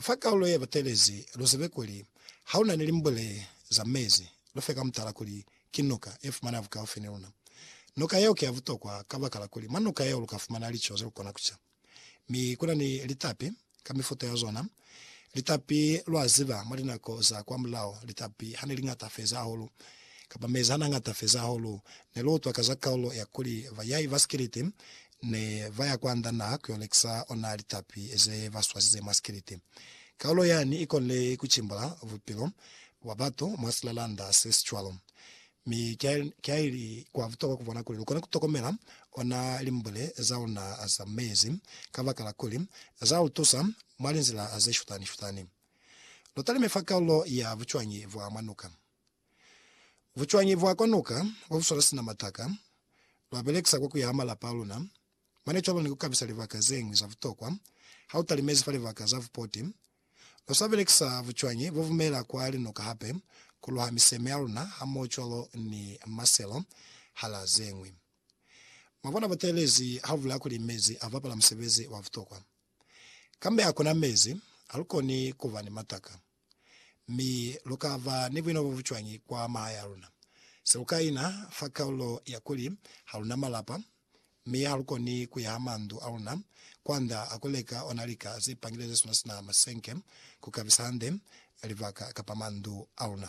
fa kalulo ye batelezi, lu zibe kuli ha lu na ni limbule za mezi, lu fe ka mutala kuli ki nuka ye fumaneha bukaufi ni luna. Nuka yeo ki ya butokwa kabakala kuli mwa nuka yeo lu ka fumana lico ze lu kona ku ca. Mi ku na ni litapi ka mifuta ya zona. Litapi, lwa ziba, mwa linako za kwamulaho, litapi ha ne li ñata feza hahulu, kapa mezi ha n'a ñata feza hahulu, ne lu utwa ka za kalulo ya kuli bayai ba sikiliti ne ba ya kwa nda naha ku yo lekisa ona litapi ze ba swasize mwa sikiliti. Kaulo yani i konile ku cimbula bupilo bwa batu mwa silalanda se si cwalo. Mi ki li kwa butokwa ku bona kuli lu kona ku tokomela ona limbule za luna za meezi, kabakala kuli za lu tusa mwa linzila ze shutani-shutani. Lu talime fa kaulo ya bucwañi bwa mwa nuka. Bucwañi bwa kwa noka bwa buswala sina mataka lwa belekisa kwa ku yaha malapa a luna mane cwalo ni ku kabisa libaka ze ñwi za butokwa ha u talimezi fa libaka za bupoti? Lwa sa belekisa bucwañi bo bumela kwa linoka hape ku luha miseme ya luna hamoho cwalo ni maselo hala ze ñwi. Mwa bona buteelezi ha bu bulela kuli mezi a bapala musebezi wa butokwa. Kambe ha ku na mezi, ha lu koni ku ba ni mataka. Mi lu ka ba ni buinaba bu cwañi kwa mahae a luna? Se lu ka ina fa kaulo ya kuli, Ha lu na malapa, mi ha lu koni ku yaha mandu a luna kwa nda a ku leka ona lika ze pangile ze suna sina masenke ku kabisa hande libaka kapa mandu a luna.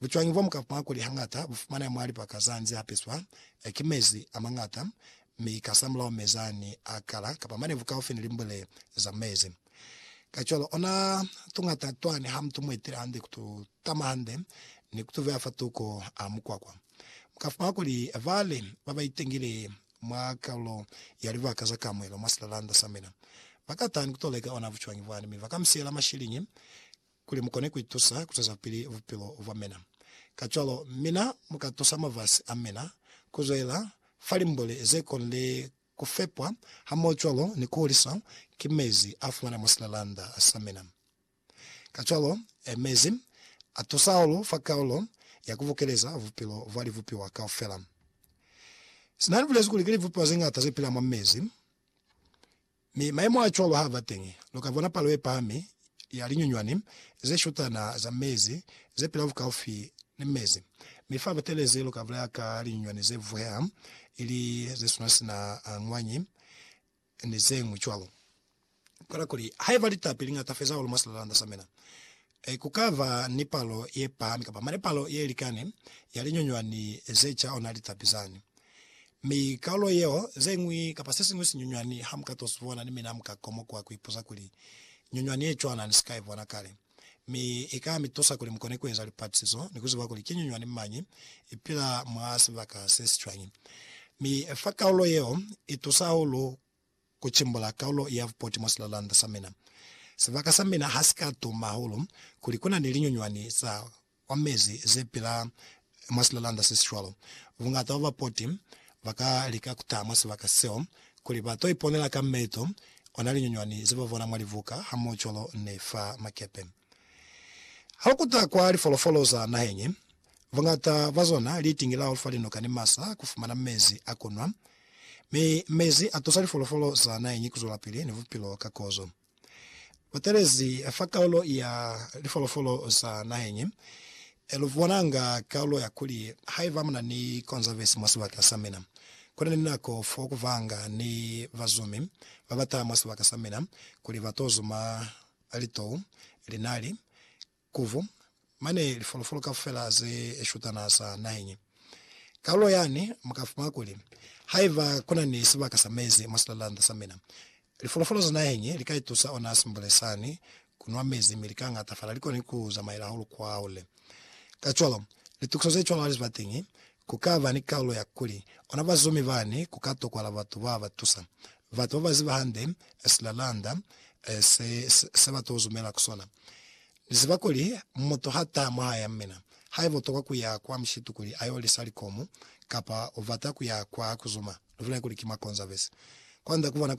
Bucwañi bwa mukapwa kuli hañata bu fumaneha mwa lipaka za nze a peswa ki mezi a mañata mi kasamulaho mezi a ni a kala kapa manevu kaufi ni limbwele za mezi. Kacwalo, ona tuñata twa ni ha mutu mu etile hande ku tu tama hande ni ku tu veya fa tuko a mukwakwa. Mu ka fumana kuli ba li ba ba itengile mwa kalulo ya libaka za kamuhelo mwa silalanda sa mina ba ka taha ni ku to leka ona bucwañi bwani mi ba ka mi siyela mashiliñi kuli mu kone ku itusa ku zwezapili bupilo bwa mina. Kacwalo, mina mu ka tusa mafasi a mina ku zwelela fa limboli ze konile ku fepwa hamohocwalo ni ku huliswa ki mezi a fumana mwa silalanda sa mina. Kacwalo, mezi a tusa hahulu fa kaulo ya ku bukeleza bupilo bwa libupiwa kaufela. Sina ni bulezi kuli ki libupiwa ze ñata ze pila mwa mezi. Mi mayemo a cwalo ha ba teñi, lu ka bona palo ye pahami ya linyunywani ze shutana za mezi ze pila bukaufi ni mezi. Mi fa batelezi lu ka bulaya ka linyunywani ze vuheha, ili ze suna sina a ngwanyi, ni zeñwi cwalo. Kwela kuli, Haiba litapi li ñata feza hahulu mwa silalanda sa mina, Ee, ku ka ba ni palo ye pahami kapa mane palo ye likani ya linyunywani ze ca ona litapi zani. Mi kaulo yeo, ze ñwi kapa se siñwi sinyunywani ha mu ka to si bona, ni mina mu ka komokuha ku ipuza kuli, Nyunywani ye cwana ni si ka i bona kale. Mi i ka mi tusa kuli mu kone ku eza lipatisizo ni ku ziba kuli ki nyunywani mañi i pila mwa sibaka se si cwañi. Mi fa kaulo yeo i tusa hahulu Ku cimbula kaulo ya bupoti mwa silalanda sa mina. Sibaka sa mina ha si ka tuma hahulu kuli ku na ni linyunywani za kwa mezi ze pila mwa silalanda se si cwalo. Bungata bwa bapoti ba ka lika ku taha mwa sibaka seo kuli ba to iponela ka meto ona linyunywani ze ba bona mwa libuka hamohocwalo ni fa makepe. Ha lu kuta kwa lifolofolo za naheng Buñata bwa zona li itingilaho fa linoka ni masa ku fumana mezi a ku nwa, mi mezi a tusa lifolofolo za naheñi ku zwelapili ni bupilo ka kozo. Butelezi fa kaulo ya lifolofolo za naheñi lu bonanga kaulo ya kuli, Haiba muna ni konzavesi mwa sibaka sa mina, ku na ni nako fo ku vanga ni bazumi ba ba taha mwa sibaka sa mina kuli ba to zuma litou, linali, Kuvu, mane lifolofolo kaufela ze shutana za naheñi. Kalulo yani muka fumana kuli, Haiba kuna ni sibaka sa mezi mwa silalanda sa mina, lifolofolo za naheñi li ka itusa ona simbule sani ku nwa mezi mi li ka ngatafala, li koni ku zamaela hahulu kwa hole. Kacwalo, litukiso ze cwalo hali ziba teñi Ku ka ba ni kaulo ya kuli, ona bazumi bani ku ka tokwala batu ba ba tusa, batu ba ba ziba hande silalanda se, se ba to zumela ku sona. Ni ziba kuli mutu ha taha mwahaya mina, haiba u tokwa ku ya kwa mushitu kuli a yo lisa likomu, kapa u bata ku ya kwa ku zuma, lu bile kuli ki mwa Konzavesi, kwand'a ku bona kuli